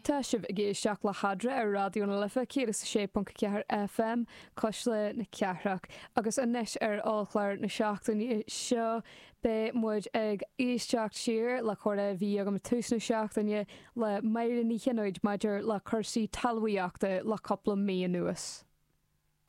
Tá sibh ag éisteacht le hAdra ar Raidió na Life 106.4 FM, cois Life na Cathrach. Agus anois ar Ollchlár na seachtaine seo beidh muid ag éisteacht siar le comhrá a bhí agam ag tús na seachtaine le Máire Ní Chionnóid maidir le cúrsaí talmhaíochta le cúpla mí anuas.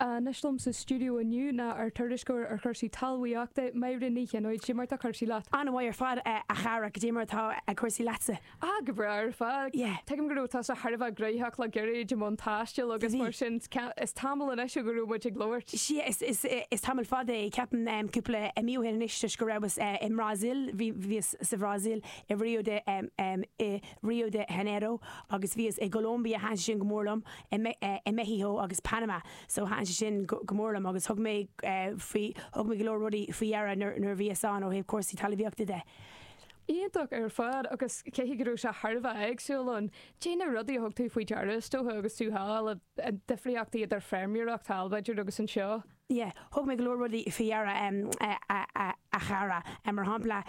Anois liom sa stiúideo inniu ná ár dtuairisceoir ar chúrsaí talmhaíochta, Máire Ní Chionnóid. Cad é mar tá cúrsaí leat. An-mhaith ar fad a chara, cad é mar atá cúrsaí leatsa. Ah, go breá ar fad. Yeah. Tuigim go raibh tusa thar a bheith gnóthach le gairid i mbun taistil agus mar sin, is tamall anois ó bhí muid ag labhairt. 'Sea, is tamall fada é, ceapaim, cúpla mí ó shin anois toisc go rabhas i mBrasaíl, bhíos sa Bhrasaíl i Rio de Rio de Janeiro agus bhíos i gColombia thaitin sé sin go mór liom i Meicsiceo agus Panama so thaitin sé sin go mór liom agus thug mé faoi thug mé go leor rudaí faoi deara nuair nuair bhíos ann ó thaobh cúrsaí talmhaíochta de. Iontach ar fad agus cé go raibh sé thar a bheith éagsúil ann céard iad na rudaí a thug tú faoi deara is dócha agus tú thall, difríochtaí idir feirmeoireacht thall b'fhéidir agus anseo? yeah thug mé go leor rudaí faoi deara a chara mar shampla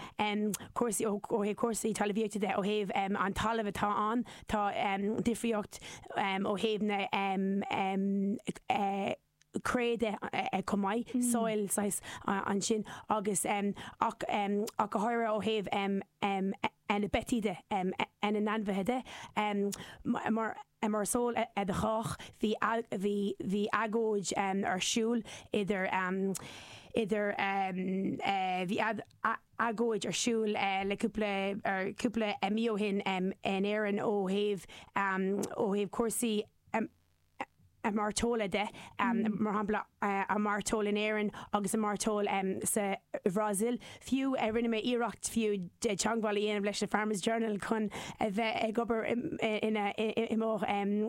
cúrsaí ó thaobh cúrsaí talmhaíochta de ó thaobh an talamh atá ann tá difríocht ó thaobh na cré de chomh maith soil saghas ansin agus ach go háirithe ó thaobh. na beithígh de, na n-ainmhithe de, mar is eol do chách bhí agóid ar siúl idir, idir, bhí agóid ar siúl le cúpla, cúpla mí ó shin in Éirinn ó thaobh, ó thaobh cúrsaí, mairteola de, mar shampla, an mhairteoil in Éirinn agus an mhairteoil sa Bhrasaíl. Fiú rinne mé iarracht fiú teagmháil a dhéanamh leis an Farmers Journal chun a bheith ag obair i mo